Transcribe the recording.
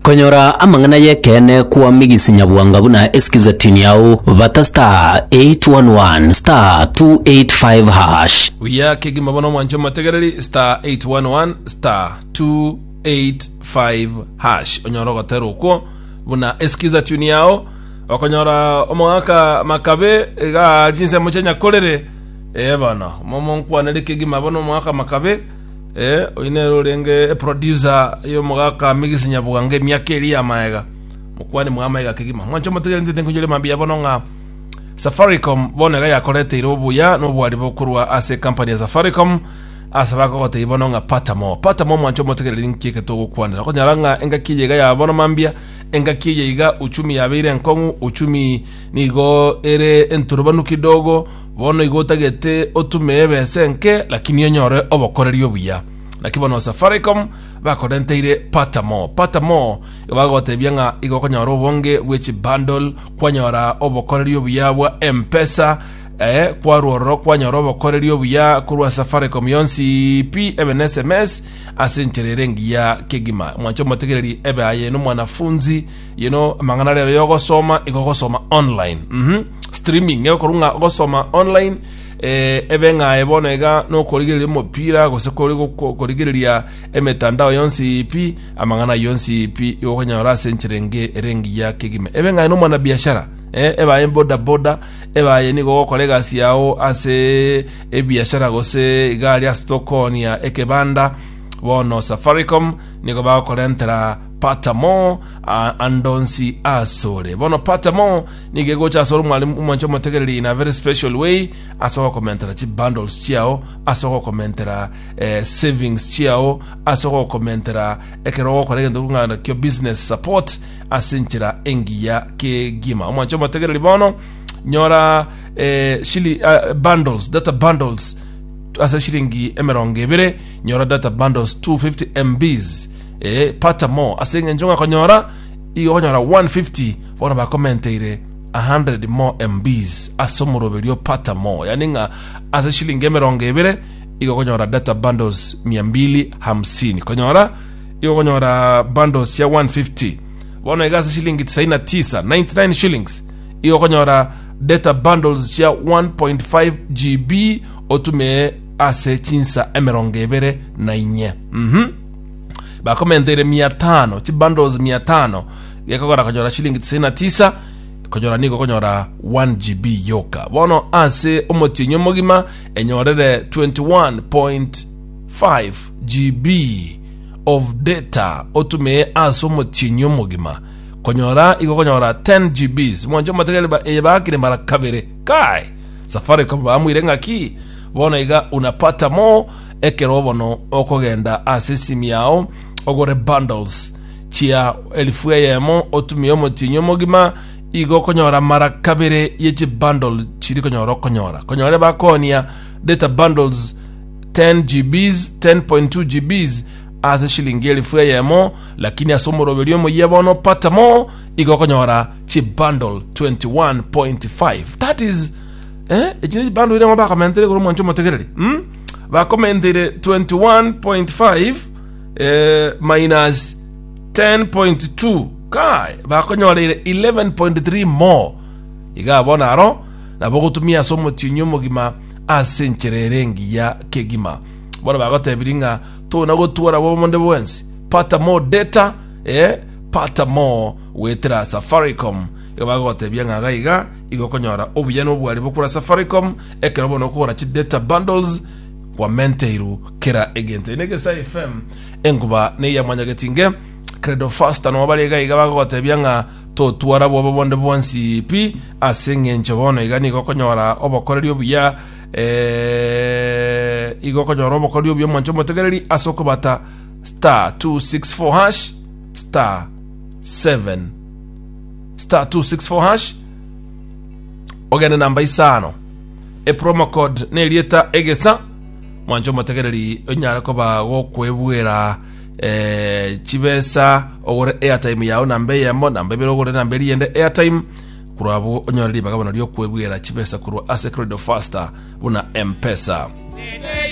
Konyora amang'ana y'ekeene kwamigisi nyabwanga buna esikizatini yao bata star 811 star 285 hash. Buya kegima bono mwanche motegereri star 811 star 285 hash onyora ogotera okwo buna esikiza tuni yao okonyora omogaka makabe iga chinsemo chia nyakorere eh bono momo nkwanere kegima bono omogaka makabe Eh, oyio nere orenge eproducer y'omogaka Migisi Nyabugange emiaka eria ya maega. Mokwani mwa maega kegima. Mwancho motegeria ntete nkonyoria mambia bono ng'a Safaricom bono iga yakoreteire obuya n'obwari bokorwa ase company ya Safaricom ase bakogotei bono ng'a pata mo pata mo mwancho motegereri nki eke togokwanera okonyara ng'a engaki eye iga ya bono mambia engaki eye iga uchumi yabeire enkong'u uchumi nigo ere enturubanu kidogo Bono igo otagete otume ebesa enke, lakini onyore obokoreri obuya. Naki bono Safaricom bakorenteire Pata More. Pata More igo bagotebia ng'a igo okonyora obonge bwe chibundle, kwanyora obokoreri obuya bwa M-Pesa, eh, kwarwa ororo kwanyora obokoreri obuya korwa Safaricom yonsi pi, ebe na SMS ase enchera ere engiya kegima. Mwanche omotegereri ebe aye nomwanafunzi you know amang'ana rero yogosoma igo ogosoma online mhm streaming nigo okorwa ng'a ogosoma online eh, ebe ng'aye bono iga nokorigereria omopira gose kori goko- korigereria emetandao yonsi ipi amang'ana yonsi ipi igo okonyora ase enchera enge ere engiya kegima ebe ng'aye nomwana biashara eh, ebaye bodaboda ebaye nigo ogokora egasi yao ase ebiashara gose iga aria ase tokonia ekebanda bono safaricom nigo bagokorentera Patamo, a- andonsi asore. Bono Patamo nigo egocha asore omwalimu omwanche omotegereri in a very special way ase ogokomentera chi bundles chiao, ase ogokomentera eh, savings chiao, ase ogokomentera ekero ogokora egento kong'ana kio business support ase enchera engiya kegima. Omwanche omotegereri bono nyora eh, shili, ah, bundles, data bundles ase shilingi emerongo ebere nyora data bundles 250 mbs Ee, pata mo, ase engencho ng'a konyora igo okonyora 150 bono bakomenteire 100 mo mbs ase omoroberio pata mo, yani ng'a ase shilingi emerongo ebere igo okonyora data bundles 250 konyora igo okonyora bundles ya 150 bono iga ase shilingi 99 99 shillings igo okonyora data bundles cia 1.5 gb otume ase chinsa emerongo ebere na inye mhm bakomenteire mia tano chibundles mia tano gekogora konyora shilingi tisaini na tisa konyora nigo konyora 1 gb yoka bono ase omotienyi omogima enyorere 21.5 gb of data otumie ase omotienyi omogima konyora igo konyora 10 gbs mwanche omotegere ba- eye bakire mara kabere kai safaricom bamuire ng'aki bono iga unapata mo Ekero bono okogenda ase esimi yao ogore bundles chia elifu eyemo otumie omotienyi omogima, igo okonyora mara kabere ye chibundle chiri konyora okonyora. Konyora ebakonia data bundles 10 GBs, 10.2 GBs ase shilingi elifu eyemo, lakini ase omoroberi omoyia bono pata more igo okonyora chibundle 21.5 that is eh, echi ne chibundle iria ng'o bakamentere igoro mwancha omotegereri mm? bakomenteire 21.5 eh, minus 10.2 kai bakonyoreire 11.3 more iga bona aro nabo gotumia ase omotienyi omogima ase enchera ere engiya kegima bono bagotebiri ng'a tona gotuora bomonde bwensi pata more data eh, pata more gwetera safaricom iga bagotebia ng'a gaiga igokonyora obuya nobwari bokura safaricom Ekero bono okogora chi data bundles kwamenteirwe kera egento. Eye negesae FM enkuba neya mwanyagetinge Credo Faster no bare iga iga bagogotebia ng'a totwara bwoba bonde bwonsi pi ase eng'encho bono iga nigo okonyora obokoreri obuya eh, igo okonyora obokoreri obuya omonche omotegereri ase okobata star 264 hash star 7 star 264 hash ogende namba isano epromo code nerieta egesa mwancho omotegereri onyare koba gokwebwera eh, chibesa ogore airtime yao namba eyemo namba ibere ogore namba eriyende airtime korwa abo onyore ribaga bono riokwebwera chibesa korwa ase credo faster buna mpesa